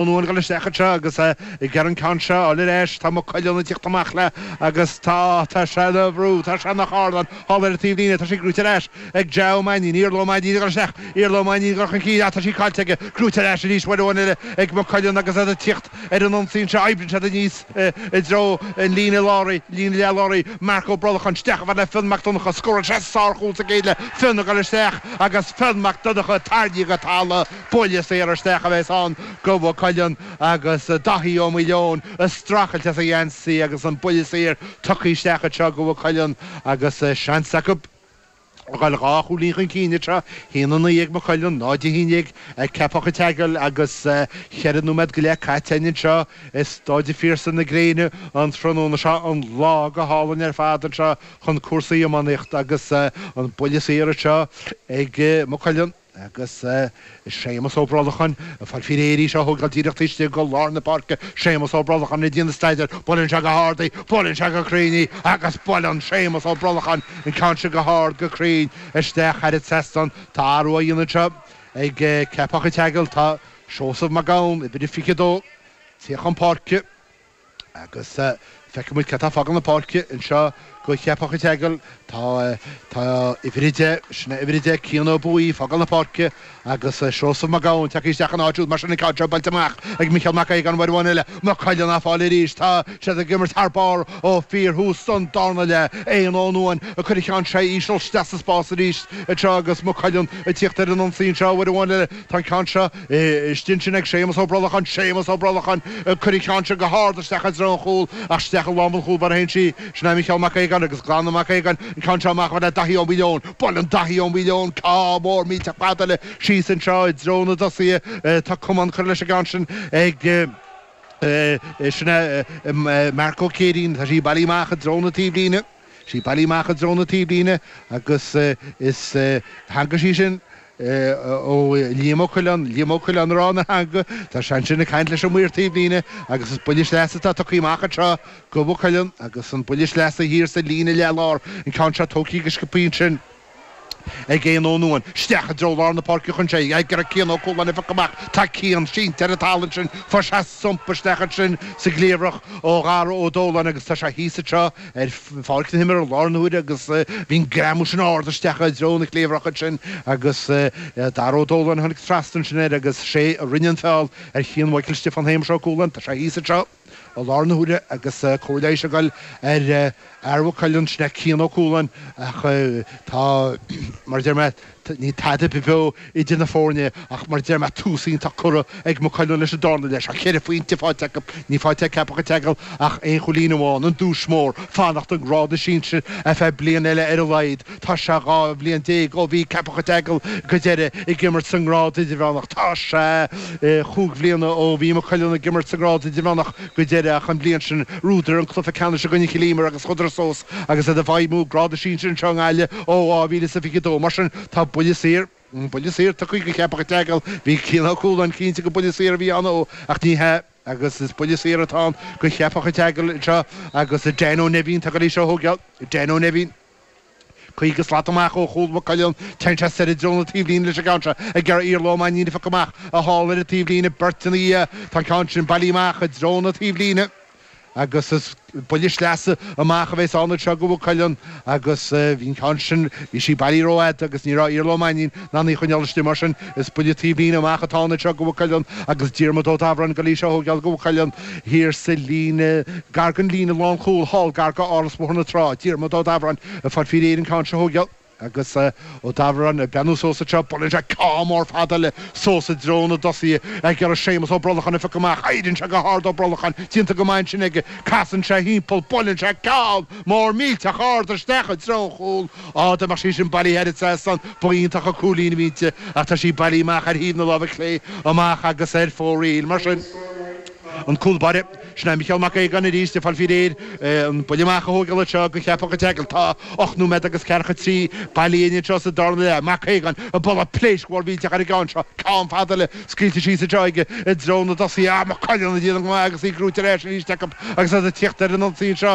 Ó Nuain ag goil isteach anseo agus ag iarraidh an ceann seo fháil ar ais, tá Maigh Cuilinn ag tíocht amach léi agus tá, tá sé ina bhrú, tá sé ina charnán, thall ar an taobhlíne, tá sí gnóite ar ais ag Ja Mainnín, Iarla Mainnín ag goil isteach, Iarla Mainnín ag goil chun cinn, ach tá sí caillte aige, gnóite ar ais arís, uair amháin eile ag Maigh Cuilinn agus iad ag tíocht ar an ionsaí anseo, oibríonn siad aníos i dtreo an líne láir í, líne leath láir í, Marc Ó Brolcháin, isteach i mbealach Fionn Mac Donnacha, scóráil seisean sárchúl sa gcéad leath, Fionn ag goil isteach agus Fionn Mac Donnacha, tarraingthe go talamh. Buille saor isteach a bheas ann go Mhaigh Cuilinn agus Daithí Ó Maoileoin a' streachailt as a gheansaí agus an buille saor tugtha isteach anseo go Mhaigh Cuilinn agus seans acu a dhul dhá chúilín chun cinn anseo. Haon a naoi ag Maigh Cuilinn, náid a haon déag ag Ceapach a' tSeagail agus cheithre nóiméad go leith caite a'inn anseo. Is dóigh di fíorsta na gréine an tráthnóna seo, an lá go hálainn ar fad anseo chun cúrsaí iománaíochta agus an buille saor anseo ag Maigh Cuilinn. Agus Séamus Ó Brolacháin, ag fáil faoi réir í seo a thógáil díreach taobh istigh go lár na páirce, Séamus Ó Brolacháin ag déanamh staidéir, buaileann sé go hard í, buaileann sé go cruinn í agus buaileann Séamus Ó Brolacháin an ceann sin go hard, go cruinn isteach thar an trasnán. Tá athrú á dhéanamh anseo ag Ceapach An tSeagail, tá Seosamh Mac Gabhann, uimhir a fiche a dó, ag tíocht chun páirce, Agus feicfidh muid cé atá ag fágáil na páirce anseo go Ceapach A'tseagail. Tá, tá uimhir 10, sin é uimhir 10, Cian Ó Buaí, ag fágáil na páirce agus Seosamh Mac Gabhann tagtha isteach ina áit siúd. Mar sin an ceann seo buailte amach ag Micheál Mac Aodhagáin uair amháin eile Maigh Cuilinn á fáil arís. Tá siad ag imirt thar barr ó fíor thús an darna leath. Eoghan Ó Nuain ag cur an cheann seo íseal isteach sa spás arís anseo agus Maigh Cuilinn ag tíocht ar an ionsaí anseo. Uair amháin eile, tá an ceann seo. Istigh ansin ag Séamas Ó Brolacháin, Séamas Ó Brolacháin! Ag cur an cheann sin go hard isteach i dtreo an chúil, ach isteach i lámh an chúl báire a théann sí. Sin é Micheál Mac Aogáin agus glanann Mac Aogáin an ceann seo amach i mbealach Daithí Ó Maoileoin. Buaileann Daithí Ó Maoileoin ceann mór millteach fada eile síos anseo i dtreo na dtosaithe, tá camán curtha leis an gceann sin ag, sin é, Marc Ó Céirín, tá sí bailithe amach i dtreo na taobhlíne. sí bailithe amach i dtreo na taobhlíne agus is tháinig sí sin ó Liam Ó Coileáin, Liam Ó Coileáin ag rá nár tháinig. Tá sé ansin ag caint leis an mhaor taobhlíne agus is buille sleasa atá tugtha amach anseo, go Mhaigh Cuilinn, agus an buille sleasa thiar sa líne leath-lár, an ceann seo tógtha go sciopthaí ansin. ag Eoghan Ó Nuain, isteach i dtreo lár na páirce a théann sé ag iarraidh Cian Ó Cualáin a phiocadh amach. Tá Cian sínte ar an talamh ansin fuair sé thump isteach ansin sa gcliabhrach ó Dhara Ó Dóláin agus tá sé thíos anseo ar pháirc na himeartha i láthair na huaire agus bhí an greamú sin ard isteach i dtreo na cliabhrach ansin agus Dara Ó Dóláin a tháinig trasna ansin air agus sé a rinne an feall ar Chian Mhaidhcil Stiofáin Shéamais Ó Cualáin. Tá sé thíos anseo. I láthair na huaire agus cóir leighis ag dul ar fhear Mhaigh Cuilinn, sin é Cian Ó Cualáin, ach tá, mar a deir mé, níl tada beo idir na foirne ach, mar a deir mé, tús iontach curtha ag Maigh Cuilinn leis an darna leath. Tá ceithre phointe faighte acu, níl faighte ag Ceapach an tSeagail ach aon chúilín amháin, an duais mhór, fanacht i ngrád na sinsir ar feadh bliain eile ar a laghad. Tá sé dhá bhliain déag ó bhí Ceapach an tSeagail go deireadh ag imirt sa ngrád idirmheánach. Tá sé chúig bhliana ó bhí Maigh Cuilinn ag imirt sa ngrád idirmheánach go deireadh ach an bhliain sin bhuadar an cluiche ceannais i gcoinne Chill Íomair agus chuadar suas agus iad ag feidhmiú i ngrád na sinsear anseo i nGaillimh ó 2022. Mar sin tá buille saor, buille saor tugtha go Cheapach an tSeagail. Bhí Cian Ó Cualáin cinnte gur buille saor a bhí ann dó ach ní hea agus is buille saor atá ann go Cheapach an tSeagail anseo agus Dan Ó Neimhín, atá ag goil í seo a thógáil, Dan Ó Neimhín. Caoga slat amach ó chúl Mhaigh Cuilinn, téann sé soir i dtreo na taobhlíne leis an gceann seo ag iarraidh Iarla Ó Mainnín a phiocadh amach thall ar an taobhlíne, beirt ina dhiaidh. Tá an ceann sin bailithe amach i dtreo na taobhlíne agus is buille sleasa amach a bheas ann anseo go Mhaigh Cuilinn agus bhí an ceann sin, bhí sí bailithe rófhada agus ní raibh Iarla Ó Mainnín in ann í a choinneáil istigh mar sin. Is buille taobhlíne amach atá ann anseo go Mhaigh Cuilinn agus Diarmaid Ó Dabhráin ag goil í seo a thógáil go Mhaigh Cuilinn thiar sa líne, gar don líne lánchúil thall gar go Áras Bhóthar na Trá, Diarmaid Ó Dabhráin ag fáil faoi réir an ceann seo a thógáil agus Ó Dabhráin ag breathnú suas anseo, buaileann sé ceann mór fada eile suas i dtreo na dtosaithe ag iarraidh Séamus Ó Brolacháin a phiocadh amach, éiríonn sé go hard Ó Brolacháin déanta go maith ansin aige, casann sé thimpeall, buaileann sé ceann mór millteach ard isteach i dtreo chúl Á, dá mbeadh sí sin bailithe thar an trasnán ba iontach an cúilín a bhí inti, ach tá sí bailithe amach ar thaobh na láimhe clé amach agus ar fóraoil. Mar sin, an cúlbáire, sin é Micheál Mac Aogáin arís, ag fáil faoi réir an buille amach a thóigeáil anseo go Ceapach an tSeagail. Tá ocht nóiméad agus ceathracha trí bailithe againn anseo sa darna leath. Mac Aogáin, ag bualadh pléisc mhór mhillteach ar an gceann seo, ceann fada eile scaoilte síos anseo aige i dtreo na dtosaithe. Á, Maigh Cuilinn ag déanamh go maith agus í gnóite ar ais arís acu agus iad ag tíocht ar an ionsaí anseo.